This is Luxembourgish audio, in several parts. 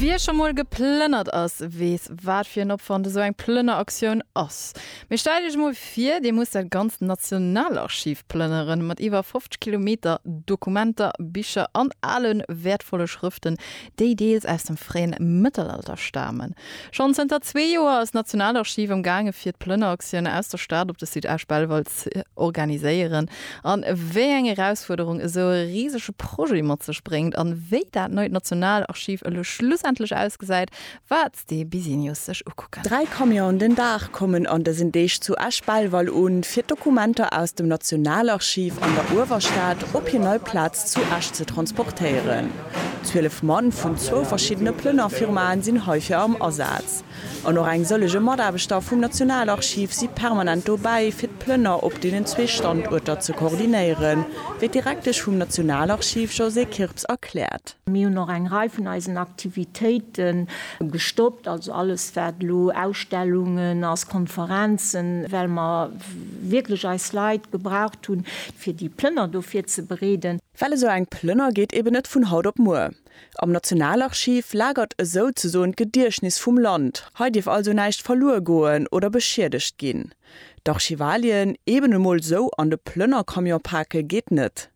Wie scho mol geplënnert ass, weess, wat fir en Opwand esou eng Plënneraktioun ass. Mee stellt Iech emol vir, Dir musst dat ganzt Nationalarchiv plënneren, mat iwwer 50 Kilometer Dokumenter, Bicher an ale wäertvolle Schrëften, déi deels aus dem fréien Mëttelalter stamen. Schonn zënter zwee Joer ass d'Nationalarchiv am gaange fir d'Plënneraktioun aus der Stad op de Site Esch-Belval ze organiséieren. An wéi eng Erausfuerderung esou e risege Projet mat sech bréngt an wéi dat neit Nationalarchiv elo schlussendlech ausgesäit, waert de Business sech ukucken. Dräi Camionen den Dag kommen an dësen Deeg zu Esch-Belval un, fir d'Dokumenter aus dem Nationalarchiv an der Uewerstad op hir nei Plaz zu Esch ze transportéieren. Zwielef Mann vun zwou verschiddene Plënnerfirmaen sinn heifir am Asaz. An och eng sëllege Mataarbechter vum Nationalarchiv si permanent dobäi, fir d'Plënner op deenen zwee Standuerter ze koordinéieren, wéi d'Direktesch vum Nationalarchiv Josée Kirps erkläert. Mir hunn och eng Rei vun eisen Aktivitéite gestoppt, also alles, wat elo Ausstellungen ass, Konferenzen, well mer wierklech eis Leit gebraucht hunn, fir déi Plënner do virzebereeden. Well esou eng Plënner geet eben net vun haut op muer. Am Nationalarchiv lagert esou ze soen d'Gediechtnis vum Land, hei dierf also näischt verluer goen oder beschiedegt ginn. D'Archivalien eben emol esou an de Plënnercamion pake geet net.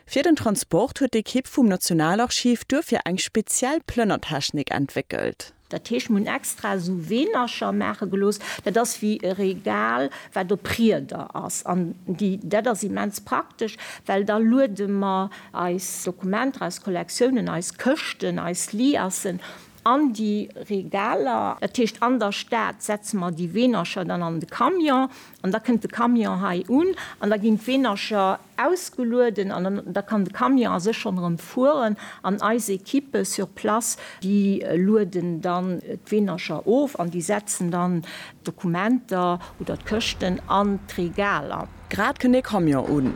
Fir den Transport huet d'Ekipp vum Nationalarchiv duerfir eng speziell Plënnertechnik entwéckelt. Dat heescht, mir hunn extra esou Weenercher maache gelooss, dat ass wéi e Regal, wat op Rieder ass. An déi, dat ass immens praktesch, well da luede mer eis Dokumenter, eis Kollektiounen, eis Këschten, eis Liassen an déi Regaler. Dat heescht, an der Stad setze mer déi Weenercher dann an de Camion an da kënnt de Camion hei un an da ginn d'Weenercher ausgelueden an da kann de Camion a sech schonn erëm fueren an eis Equippe sur place, déi lueden dann d'Weenercher of an déi setzen dann d'Dokumenter oder d'Këschten an d'Regaler. Grad kënn ee Camion un.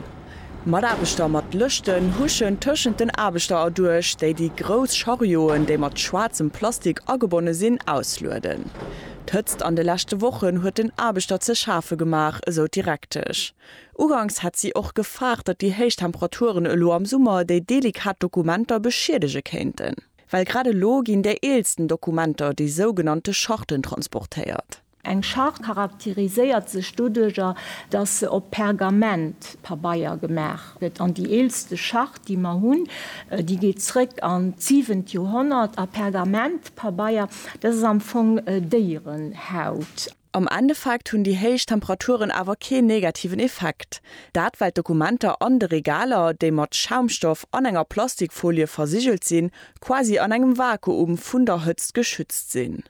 Mataarbechter mat Lëschten huschen tëschent den Aarbechter erduerch, déi déi grouss Charioen, déi mat schwaarzem Plastik agebonne sinn, auslueden. D'Hëtzt an de leschte Wochen huet den Aarbechter ze schafe gemaach, esou d'Direktesch. Uganks hätt si och gefaart, datt déi héich Temperaturen elo am Summer déi delikat Dokumenter beschiedege kéinten. Well grad elo ginn déi eelsten Dokumenter, déi sougenannte Charten, transportéiert. Eng Charte charakteriséiert sech doduercher, datt se op Pergament, Pabeier, gemaach gëtt. An déi eelste Charte, déi mer hunn, déi geet zréck an d'siwent Joerhonnert. A Pergament, Pabeier, dat ass am Fong Déierenhaut. Am Endeffekt hunn déi héich Temperaturen awer keen negativen Effekt. Dat well d'Dokumenter an de Regaler, déi mat Schaumstoff an enger Plastikfolie versigelt sinn, quasi an engem Vakuum vun der Hëtzt geschützt sinn.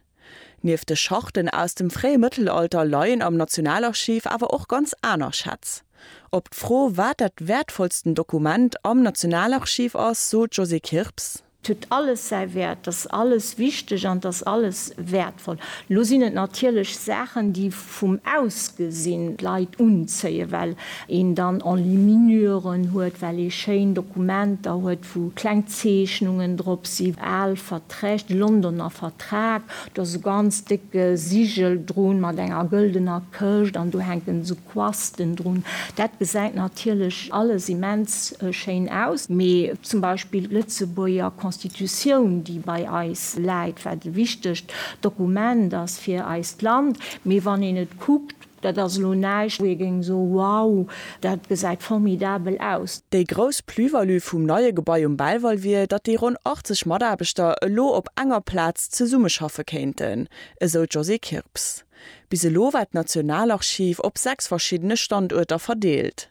Nieft de Charten aus dem fréie Mëttelalter leien am Nationalarchiv awer och ganz aner Schätz. Op d'Fro, wat dat wäertvollsten Dokument am Nationalarchiv ass, sot d'Josée Kirps. 't huet alles säi Wäert, 't ass alles wichteg an 't ass alles wäertvoll. Lo sinn et natierlech Saachen, déi vum Ausgesinn d'Leit unzéien, well een dann Enluminuren huet, well ee schéin Dokumenter huet, wou kleng Zeechnungen drop sinn, al Verträg, de Londoner Vertrag, do ass e ganz décke Sigel drun mat enger gëldener Këscht an do hänken esou Quasten drun. Dat gesäit natierlech alles immens schéin aus, mee zum Beispill d'Lëtzebuerger Constitutioun, déi bei eis läit, wat e wichtegt Dokument ass fir eist Land, mee wann een et kuckt, dat ass elo näischt, wou ee géing soen, wow, dat gesäit formidabel aus. Déi grouss Plus-value vum neie Gebai um Belval wier, datt déi ronn 80 Mataarbechter elo op enger Plaz zesummeschaffe kéinten, esou d'Josée Kirps. Bis elo war d'Nationalarchiv op sechs verschiddene Standuerter verdeelt.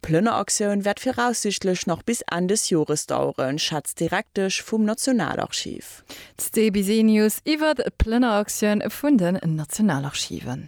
D'Plënneraktioun wäert viraussiichtlech nach bis Enn des Jores daueren, schätzt d'Direktesch vum Nationalarchiv. D'Sté Bisenius iwwert d'Plënneraktioun vun den Nationalarchiven.